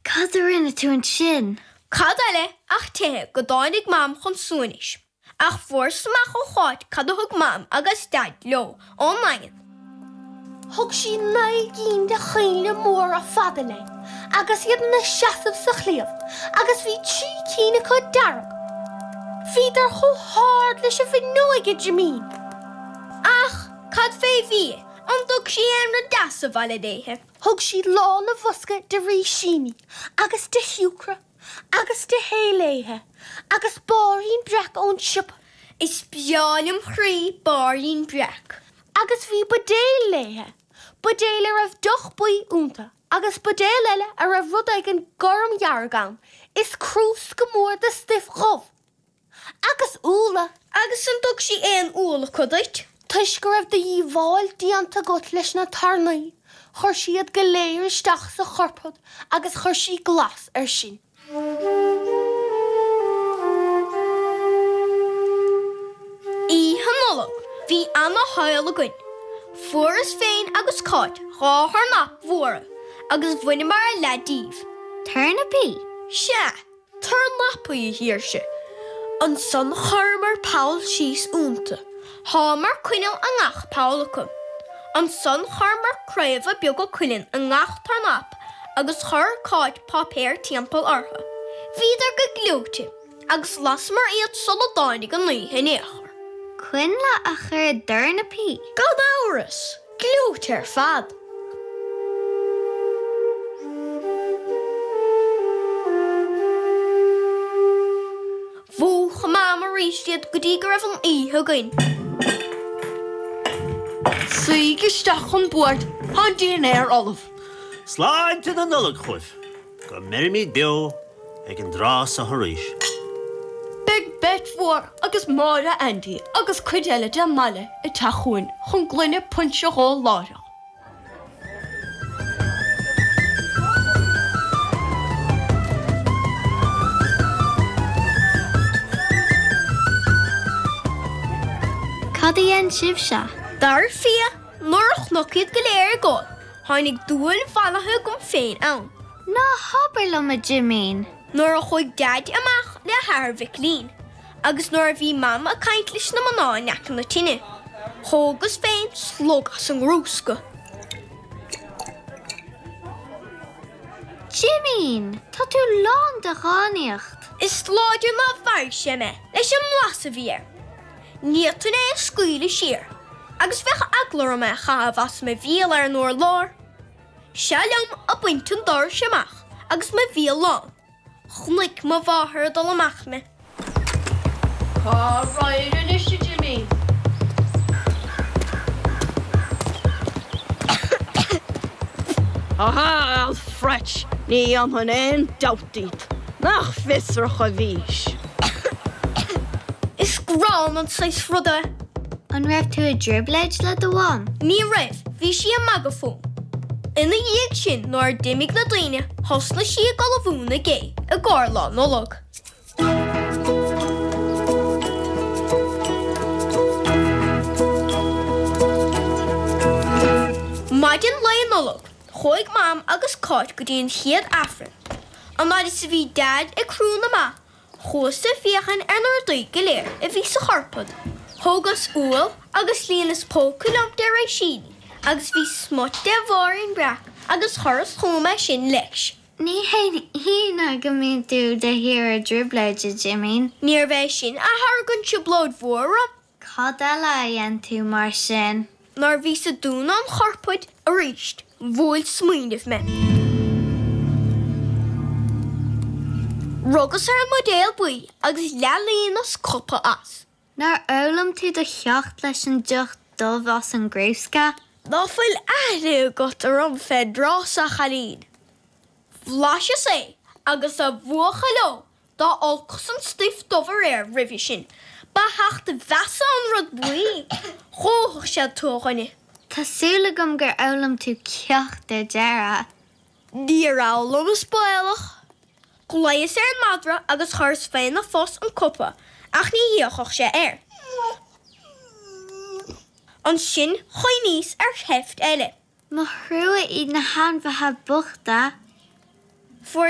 Cad a rinne tú ansin? Cad eile ach teicheadh go dtáinig Mam chun suaimhnis. Ach fuaireas amach ó Cháit cad a thug Mam agus Daid leo ón nDaingean. Thug sí naoi gcinn de choinnle móra fada lei agus iad ina seasamh sa chliabh agus bhí trí cinn acu dearg. Bhíodar chomh hard leis an bhfuinneoig, a Jimín. Ach cad fé bhia? An dtug sí aon rud deas abhaile léithe? Thug siad lán an bhosca de rísíní agus de shiúcra agus de thae léithe agus bairín breac ón tsiopa. Is breá lem chroí bairín breac. Agus bhí buidéil léithe, buidéil a raibh deoch buí ionta agus buidéil eile a raibh rud éigin gormdhearg ann is crúsca mór de stuif dhubh. agus úlla. Agus an dtug sí aon úll acu duit? Toisc go raibh do dhíobháil déanta agat leis na tairní chuir sí iad go léir isteach sa churpad agus chuir sí glas ar sin. Oíche Nollag bhí ana shaol againn. Fuaireas féin agus Cáit dhá thurnap mhóra agus bhaineamar a leath díobh. Turnapaí? Sea. Turnapaí, a Shaoirse. Ansan chuireamar poll síos ionta. Shámar coinneal i ngach poll acu. Ansan chuireamar craobha beaga cuilinn i ngach turnap agus chuir Cáit páipéar timpeall ortha. Bhíodar go gleoite agus lasamar iad sula dtáinig an oíche in aon chor. Coinnle a chur i dturnapaí. Gan amhras! Gleoite ar fad. Mhúch Mam aríst iad go dtí go raibh an oíche againn. Suígí isteach chun boird, tá an dinnéar ullamh. Sláinte na Nollag chugaibh! Go mbeirimíd beo! Ag an dtráth so arís. Beidh Beit Mhór agus Máire Aindí agus cuid eile den mbaile ag teacht chugainn chun gloine puinse a dh'ól láithreach. Cad a dhein sibhse? Dar fia, nuair a chonac iad go léir ag ól, tháinig dúil mhallaithe agam féin ann. Ná habair liom, a Jimín. Nuair a chuaidh Daid amach le hathair Mhicilín agus nuair a bhí Mam ag caint leis na mná in aice na tine, thógas féin slug as an gcrúsca. Jimín, tá tú lán de dhánaíocht. Is láidir nár mharaigh sé mé leis an mblas a bhí air. Ní fhéadfainn é a scaoileadh siar, agus bheadh eagla orm é a chaitheamh as mo bhéal ar an urlár. Seo liom ag baint an dorais amach agus mo bhéal lán. Chonaic mo mháthair ag dul amach mé. Cá raghair anois a Jimín. Tá a fhios duit. Ní dhéanfainn aon dabht. díot nach fiosrach a bhís. Is gránna an saghas ruda é. An raibh tú i dtrioblóid le do mham? Ní raibh, bhí sí ag magadh fúm. Ina dhiaidh sin nuair a d'imigh na daoine thosnaigh sí ag ullmhú na gé i gcóir Lá Nollag. Maidin Lae Nollag Chuaigh Mam agus Cáit go dtí an chéad Aifreann. An fhaid is a bhí Deaid ag crúdh na mba, chuas ag féachaint ar na rudaí go léir a bhí sa chupard. Thógas úll agus líonas póca liom de réisíní agus bhí smut de bhairín breac agus chuireas chugam é sin leis. Ní hionadh go mbíonn tú de shíor i dtrioblóid, a Jimín. Níorbh é sin a tharraing an trioblóid mhór orm. Cad eile a dhein tú mar sin? Nuair a bhíos ag dúnadh an chupaird arís bhuail smaoineamh mé. Rugas ar an mbuidéal buí agus leath-líonas cupa as. Nár fhoghlaim tú do cheacht leis an deoch dubh as an gcrúsca? Ná fuil aithne agat orm fén dtráth so, a chailín. Bhlaiseas é agus a bhuachaill ó! Dá olcas an stuif dubh aréir roimhe sin, ba sheacht measa an rud buí, dhófadh sé thú a dhuine. Tá súil agam gur fhoghlaim tú ceacht ar deireadh. Níor fhoghlaim, is baolach. Ghlaos ar an madra agus chuireas féna phus an cupa, ach ní fhéachfadh sé air. Ansin chuimhníos ar sheift eile. Mo thrua iad na hainmhithe bochta. Fuaireas